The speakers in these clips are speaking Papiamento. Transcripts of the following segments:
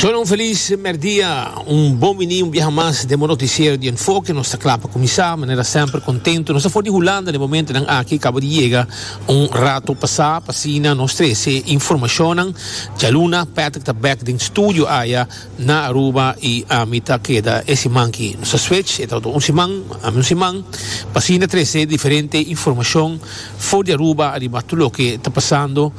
Shona un felis merdia, un bon biní un biaha mas den bo noticiero di Enfoke. Nos ta kla pa kuminsá, manera semper kontentu. Nos ta for di Hulanda den momentonan aki, kaba di yega un ratu pasá. Pa asina nos trese e informashonnan djaluna. Patrick ta bèk den studio aya na Aruba i ami ta keda e siman ki nos ta switch. E ta otro un siman, ami un siman. Pa asina trese diferente informashon for di Aruba ariba tur loke ta pasando.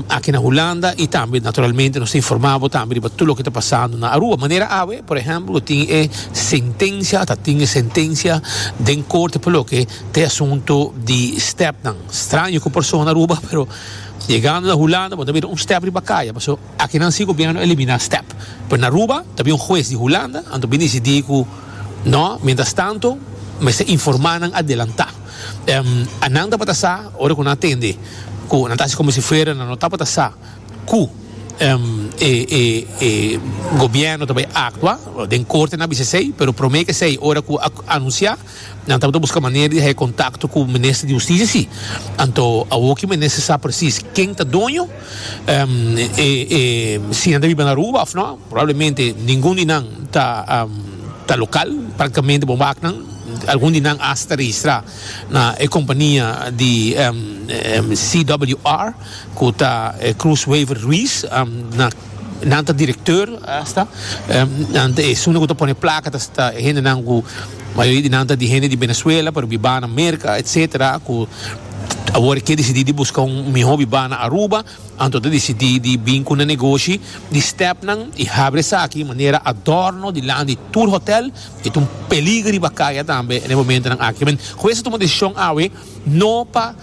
aki na Hulanda y tambe naturalmente nos ta informa bo tambe riba tur loke ta pasando na Aruba manera awe por ehemplo tin e sentencia o ta tin e sentencia den corte pa loke ta e asunto di step nan straño cu persona na Aruba pero yegando na Hulanda bo ta bira un step riba caya pasobra aki nan si gobierno a elimina step pero na Aruba ta bin un huez di Hulanda anto a bin dicidi cu no mientras tanto mester informa nan adelanta. Em, a nan tabata sa, ora cu nan a tende, cu nan ta haci como si fuera nan no tabata sa cu, em, e, e, e Gobierno ta bay actua, den Corte nan a bisa esey, pero prome que esey, ora cu a anuncia, nan tabata busca manera di haci contacto cu Minister di Husticia, si. Anto, awoki Minister sa precies ken ta doño. Ehm, e, e, si nan ta biba na Aruba of no, probablemente ningun di nan ta, ehm, ta local, practicamente bon wak nan, algun di nan hasta registra na e compania di, ehm, ehm, CWR, cu ta e Cruz Wever Ruiz, ehm, na, nan ta directeur hasta, ehm, nan ta esun cu ta pone placa, ta, ta e hendenan cu. Mayoria di nan ta di hende di Benezuela pero bibá na Merka etc. Ku awor e ke disidí di buska un mihó bibá na Aruba, anto ta disidí di bin ku nan negoshi di stèpnan i habri esaki manera adorno dilan di tur hotèl. E ta un peliger riba kaya tambe na e momentonan aki. Min, Juez a tuma desishon awe no pa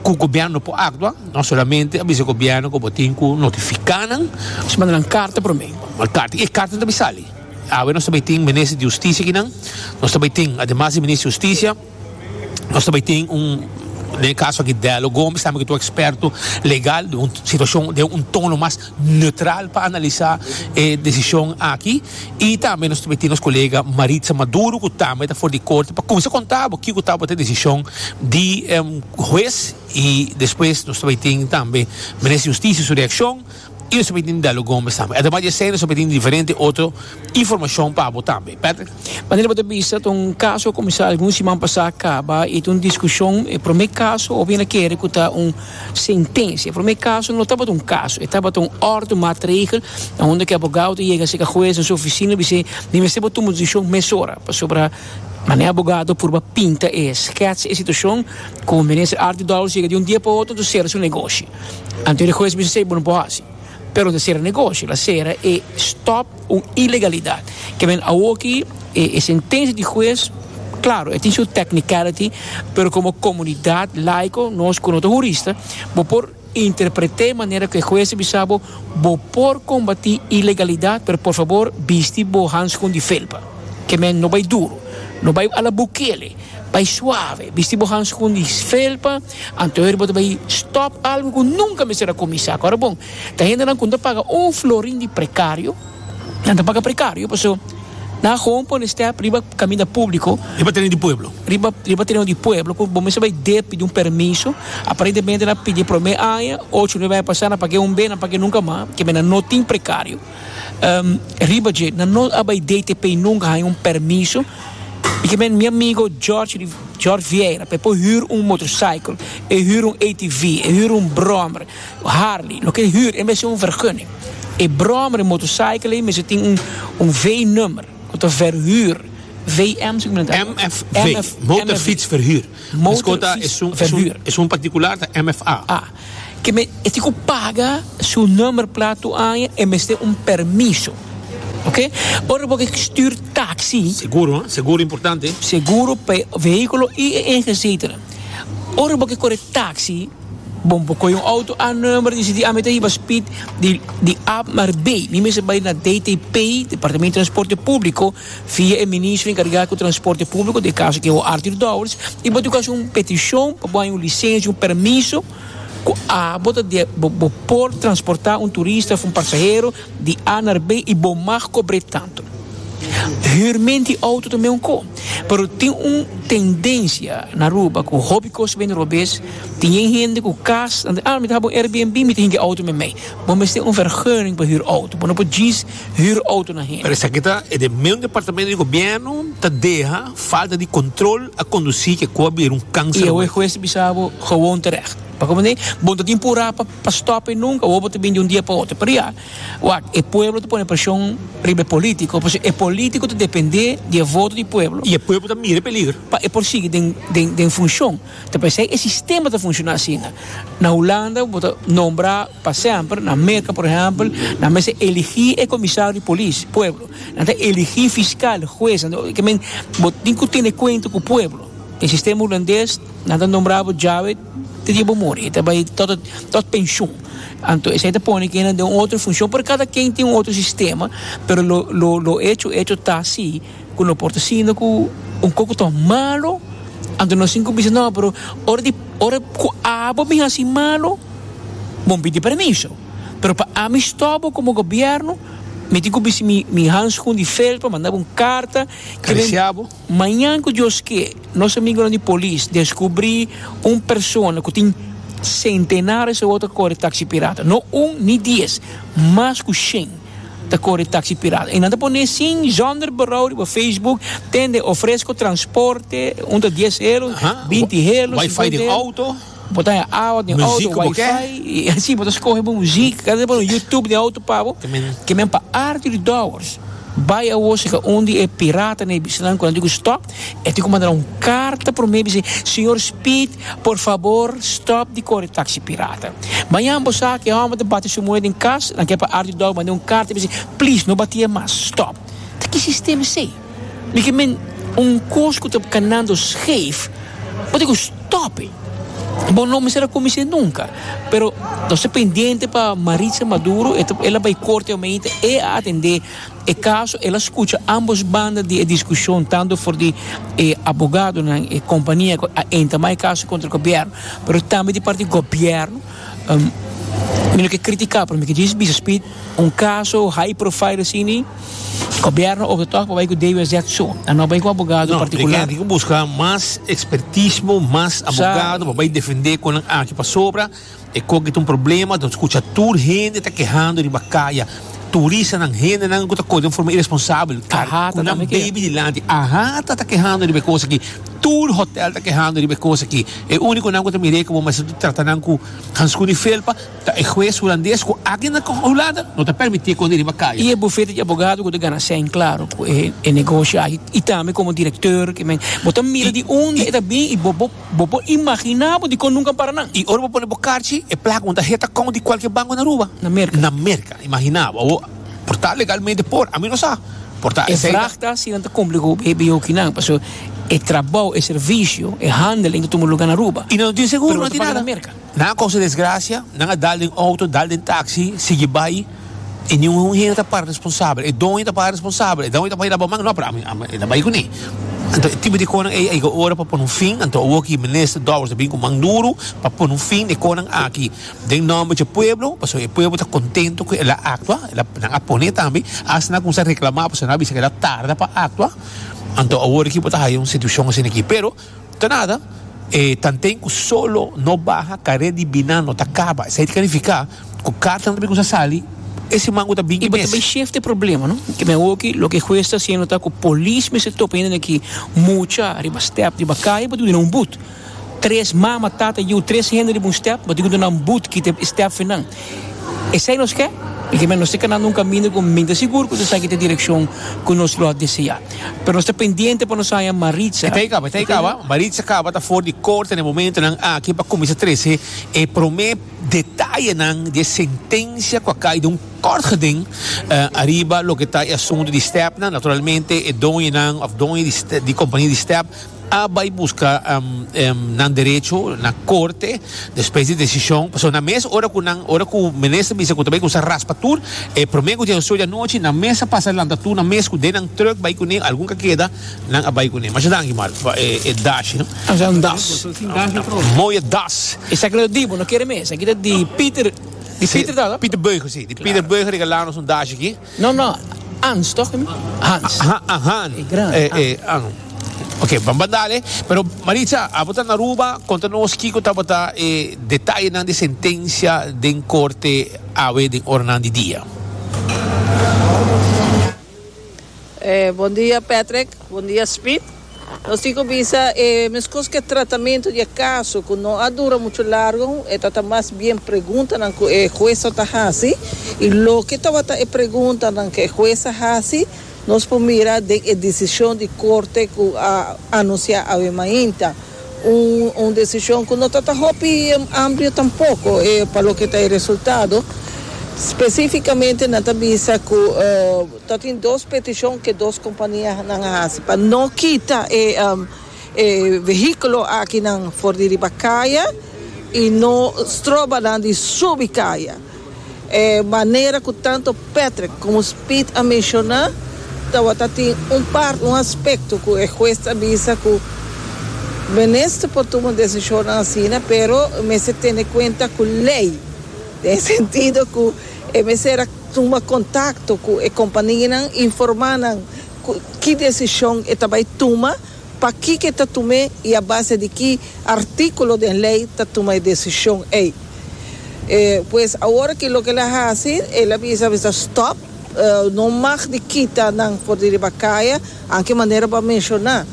ku gobièrnu no por aktua, no solamente a bisa gobièrnu ku bo tin ku notifiká nan. Manda nan karta promé. Manda karta. I e karta no ta bisa alí. Awe nos ta bay tin Minister di Husticia aki nan, nos ta bay tin ademas di Minister di Husticia nos ta bay tin un den e caso aki Delo Gomes tambe ki ta un experto legal den un situacion den un tono mas neutral pa analisa e decision aki y tambe nos ta bay tin nos colega Maritza Maduro cu tambe ta for di Corte pa cuminsa conta abo kico tabata e decision di Huez y despues nos ta bay tin tambe Minister di Husticia su reaccion. y nos ta miti den lo Gomez tambe ademas di esey nos ta miti diferente otro informacion pa bo tambe Patrick. Manera bo ta bisa ta un caso a comenzá algun siman pasá caba y ta un discusion e prome caso a bira kere cu ta un sentencia e prome caso no tabata un caso e tabata un orde maatregel aunda ki abogado ta yega cerca huez na su oficina y bis'e mi mester bo tuma un decision mesora pasobra manera abogado purba pinta e sketch e situacion cu minister Artie Dowles yega di un dia pa otro ta cera su negoshi. Antes di hues bisa esei bo no por hasi. Pero ta sera negoshi, la sera e stop un ilegalidat. Kiawen awoki e e sentensia di hues, claro, e tin su technicality, pero como comunidad laico, nos cu no ta hurista, bo por interprete manera cu e hues ta bisa bo, bo por combati ilegalidat, pero por fabor bisti bo hanskun di felpa. Ke men no bay duro, no bay a la Bukele, bay suave, bisti bo hanskun di felpa. Anto hende bo ta bai stop algo cu nunca mester a cuminsa cu. Ahora bon, ta hendenan cu no ta paga un florin di precario, nan ta paga precario paso nan a gewoon pone step riba caminda publico, Riba tereno di pueblo. riba, riba tereno di pueblo cu bo mester bai dep pidi un permiso, aparentemente nan a pidi e prome aña, ocho, nuebe aña pasa nan pague un be, nan pague nunca mas, keme nan no tin precario. Riba dje, nan no a bai DTP i nunca a haña un permiso. I ke men mi amigo George di George Vieira pa e por huur un motorcycle, e huur un ATV, e huur un brommer, Harley, loke e huur, e mester un vergunning. E brommer, e motorcycle ei mester tin un V-nummer ku ta verhuur, VM si ku men ta keda? MFV, Motorfietsverhuur. Motorfietsverhuur. Esun particular ta MFA. Ke me e tin ku paga su number plat tur aña e mester un permiso ok ora bo ke stuur taxi Seguro ha seguro importante. seguro pa e vehículo y e eje etcetera ora bo ke kore taxi bo por koyo un auto a number y deci di ami ta hiba speed di di a mar b mi mester bay na DTP departamento transporte publico via e Ministro encarga cu Transporte Publico, den e caso ki bo Arthur Dowers, y bo ta cu haci un peticion pa bo haña un licencia, un permiso cu a bo ta de bo bo por transporta un turista of un pasahero di A naar B y bo mag cobre tanto. Huur men di auto ta men un co, pero tin un tendencia na Aruba cu hopi cos ta bini robes, tin yen hende cu cas nan ta ah mi ta haba un Airbnb mi ta hinca auto memey, bo mester un vergunning pa huur auto, bo no por djis hür auto na hende. Pero esaki ta e den meun departamento di gobierno ta deha falta di control a conduci ke cu a bira un cancer. Y awe hues ta bisa bo gewoon terecht. Pa como así? Bo no ta tin pura pa pa stop e nunca, awor bo ta bin di un dia pa otro. Pero ya, wak, e pueblo ta pone presion riba e politico, pasobra e politico ta depende di e voto di pueblo. Y e pueblo ta mira e peligro. Pa e por sigui den den den funcion. Ta pasobra esei e sistema ta funciona asina. Na Hulanda bo ta nombra. Pa semper, na Merca por ehempel, nan mester eligi e comisario di polis, pueblo. Nan ta eligi fiscal, huez, nan ta, men, bo tin cu tene cuenta cu pueblo. Den sistema Hulandes, nan ta nombra bo djawe te dia bo muri, e ta bay tot, tot pensioen. Anto esey ta pone kende den un otro funcion, pero cada ken tin un otro sistema, pero lo, lo, lo hecho, hecho ta si. ku lo por ta siña ku un kokoton malu anto no sin ku bisa no pero ora di ora ku abo mi hasi malu bo mi pidi permiso pero pa ami stòp bo komo gobièrnu mi tin ku bisti mi mi hanskun di felpa manda bo un karta karisiá bo mañan ku Dios ke nos amigonan di polis deskubrí un persona ku tin sentenares e wou ta kore taksi pirata no un ni dies mas ku shen. ta kore taksi pirata. E nan ta poné sin zonder berou riba Facebook tende ofresko transporte un ta dies helo, binti helo, singenta helo. Wifi den outo. Bo ta haña awa den outo, wifi, i así bo ta skohe bo muzik. Kende ta pone YouTube den outo pa bo. Ke men pa arti di dòwers bai awor seka un di e piratanan, e bistanan ku nan di ku stòp. E tin ku manda un karta promé bis'é, Señor Speed, por fabor stòp di kore taksi pirata. Mañan bo sa ku e hòmber ta bati su muhé den kas, nan ke pa ardu dòk mand'é un karta bis'é, Please, no bati'é mas, stòp. Ta ki sistema esei? Mi ke men un kos ku ta kanando skef, bo tin ku stòp'é. Bo no mester a kumins'é nunka. Pero nos ta pendiente pa Maritza Maduro, el a bai korte home'ita, e a atendé E kaso el a skucha ámbos banda di e diskushon, tantu for di e abogadonan, e kompania ku a entama e kaso kontra gobièrnu, pero tambe di parti gobièrnu. Mi no ke kritiká, pero mi ke djis bisa Speed, un kaso high profile asini, gobièrnu of de tòg por bai ku DWZ so, a no bai ku abogado partikular. No, e genti ke buska mas ekspertismo, mas abogado, por bai defendé kon nan aki pasobra. E koki ta un problema, nos kucha tur hende ta kehando riba kaya, turistanan, hendenan ku ta kore den forma iresponsabel, kar ku nan bebe dilanti. Ahata ta kehando riba e kos aki, tur hotèl ta kehando riba e kos aki. E únikonan ku ta mir'é ku bo mester ta trata nan ku hanskun di felpa ta e hues hulandes ku aki na Hulanda no ta permití e kosnan riba kaya. I e bufete di abogado ku ta gana sèn klaro ku e negoshi aki i tambe komo direktor, bo ta mira di unda e ta bin i bo bo. Bo por imaginá bo dikon nunka para nan. I ora bo pone bo karchi, e plaka unta heta kònt di kualke banko na Aruba? Na Merka. Na Merka. Imaginá bo. Bo por ta legalmente por. Ami no sa. Por ta. E vraag ta si nan ta kumpli ku e biahoki nan. Paso e trabou, e servisio, e handeling ta tuma luga na Aruba. I nan no tin seguro, nan no tin nada. Nan a kosa desgracia, nan a dal den auto, dal den taxi, sigui bai, y ni un hende ta para responsabel. E doño ta para responsabel, e doño ta bai laba man, no pero ami, ami e ta bai cu ni. Anto e tipo di conan ey a yega ora pa pone un fin, anto awo aki Minister Dowers a bin cu man duro pa pone un fin den e conan aki den nomber dje pueblo, pasobra e pueblo ta contento cu el a actua, el a, nan a pone tambe, hasta nan a cuminsa reclama pasobra nan a bisa cu el a tarda pa actua, anto awor aki bo ta haya un situacion asina aki, pero. Ta nada, e tanten ku solo no baha karé di binan no ta kaba. Esei ta kalifiká ku kartanan ta bin kusa sali e siman ku ta bin i mes. I bo ta bin shef di e problema, no? Ke men hoki loke e hues ta hasiendo ta ku polis mester topa hende aki mucha riba stèp riba kai pa duna nan un but. Tres mama, tata, yiu, tres hende riba un stèp pa duna nan but kita e stèpfinan. Esei nos ke, i kimen nos ta kana na un kaminda ku mi ta sigur ku ta saki te direkshon ku nos lo a deseá. Pero nos ta pendiente pa nos haña Maritza. Esei kaba, esei kaba. Maritza kaba ta for di korte na e momentunan aki pa kuminsá trese e promé detayenan di e sentensia ku a kai den un kòrtgeding ariba loke ta e asuntu di stèpnan. Naturalmente e doñonan òf doño di kompania di stèp a bai buska nan derecho na corte despues di decision pasobra na mes ora cu nan ora cu minister bisa cu ta bai cuminsa raspa tur e prome cu dje soe di anochi nan mes a pasa lanta tur nan mes cu den nan truck bai cune algun ca keda nan a bai cune masha danki Marco pa e e dashi no Esaki ta un das. Mooi das. Esaki lo ta di bo no kere mes esaki ta di Pieter di Pieter ta la? Pieter Beuger si di Pieter Beuger regala nos un dashi aki. No, no, Hans tok e mi? Hans. Ha, ha, Han. E gran E, e, Han. Han. Ok, ban ba dale. Pero, Maritza, abo ta na Aruba, konta nos kiko tabata e detayenan di sentensia den korte awe den oranan di dia. E, Bon dia, Patrick. Bon dia, Speed. Nos tin cu bisa e mescos cu e tratamento di e caso cu no a dura mucho largo, e ta ta mas bien preguntanan cu e huesnan ta haci y loke tabata e preguntanan cu e hues a haci nos por mira den e decision di Corte cu a anuncia awe mainta. Un un decision cu no ta ta hopi amplio tampoco e pa loke ta e resultado, specificamente nan ta bisa cu. Ta tin dos peticion cu e dos companianan a haci pa no kita e e vehiculo akinan for di riba caya y no stroba nan di subi caya. E manera cu tanto Patrick como Speed a menciona tawata tin un part, un aspecto cu e huez ta bisa cu Minister por tuma decisionnan asina pero mester tene cuenta cu ley den e sentido cu e mester a. Tuma kontakto ku e kompanianan, informá nan ku ki desishon e ta bai tuma, pa kiko e ta tum'é i a base di ki artíkulo den lei ta tuma e desishon ei. Pues awor aki loke el a hasi, el a bisa mester stòp, no mag di kita nan for di riba kaya, anke manera bo a menshoná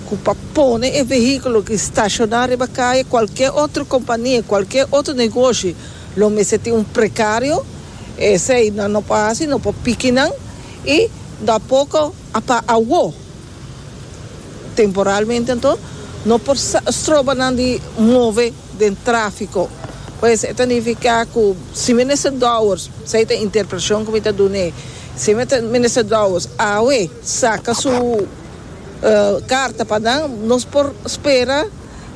ku pa pone e vehíkulo ki stashoná riba kaya, kualke otro kompania, kualke otro negoshi lo mester tin un prekario. Esei nan no por hasi, no por piki nan i tampoco a pa awo. Temporalmente anto no por stroba nan di move den trafico. Pues e ta nifica cu si Minister Dowers, esei ta e interpretacion cu mi ta dun'e, si Minister Dowers awe saca su carta pa nan, nos por spera.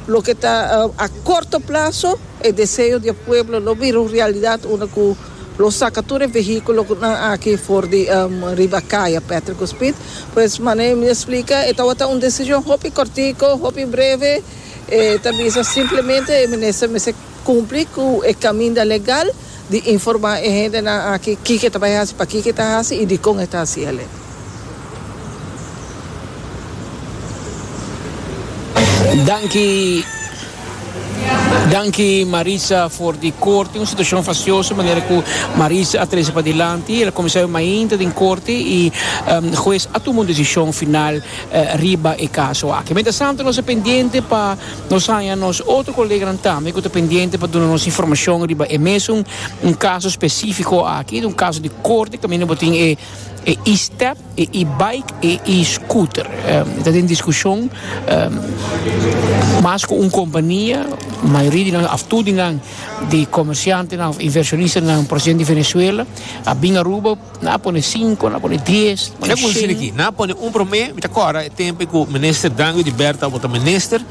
Loke ta a korto plaso, e deseo di e pueblo lo bira un realidat unda ku lo saka tur e vehíkulonan aki for di riba kaya Patrick Húspit. Pues manera mi a splika e tabata un desishon hopi kòrtiku, hopi breve, e ta bisa simplemente e minister mester. Cumpli cu e caminda legal di informa e hendenan aki kico e ta bay haci, pakico e ta haci y dicon e ta haci aley. Danki Danki Marisa for di corte, un situacion facioso manera cu Marisa a trece padilanti, el a comenzá e mainta den corte y huez a tuma un decision final riba e caso aki. Mientras tanto nos a pendiente pa. Nos haña nos otro koleganan tambe ku ta pendiente pa duna nos informashon riba e mesun un kaso spesifiko aki, un kaso di korte kaminda bo tin e e-step, e e-bike, e e-scooter. E ta den diskushon mas ku un kompania, mayoria di nan òf tur di nan di komershantenan òf invershonistanan, por ejemplo di Venezuela a bin Aruba, Na pone sinku, na pone dies, na pone kushin. Shina ki, na pone un promé. Mi ta kòrda e tempu ku Minister Dangu di Bèrt tabata minister.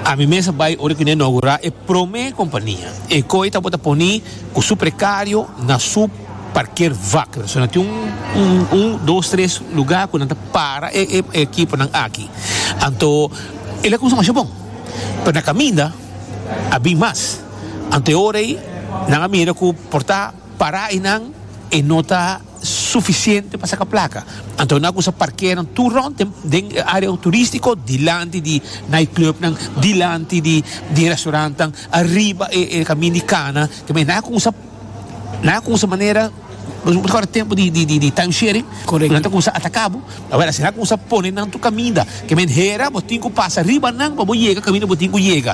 Ami mes a bai ora ku ne inaugurá e promé kompania. E koi tabata poní ku su prekario na su parker vak. Persona tin un, un, un, dos, tres lugá ku nan ta para e, e, e ekiponan aki. Anto el a kumsa masha bon. Pero na kaminda a bin mas. Anto e ora ei nan a mira ku por ta. Para einan e no ta sufisiente pa saka plaka, anto nan a kusa parkeanan tur rond den e área turístiko, dilanti di nightclubnan, dilanti di restaurantnan, ariba e kamin di kana, tambe nan a kusa nan a kusa manera ora tempu di time sharing nan ta kusa ataka bo, awor asi nan a kusa pone nan tur kaminda, ke men hera bo tin ku pasa riba nan pa bo yega kaminda bo tin ku yega.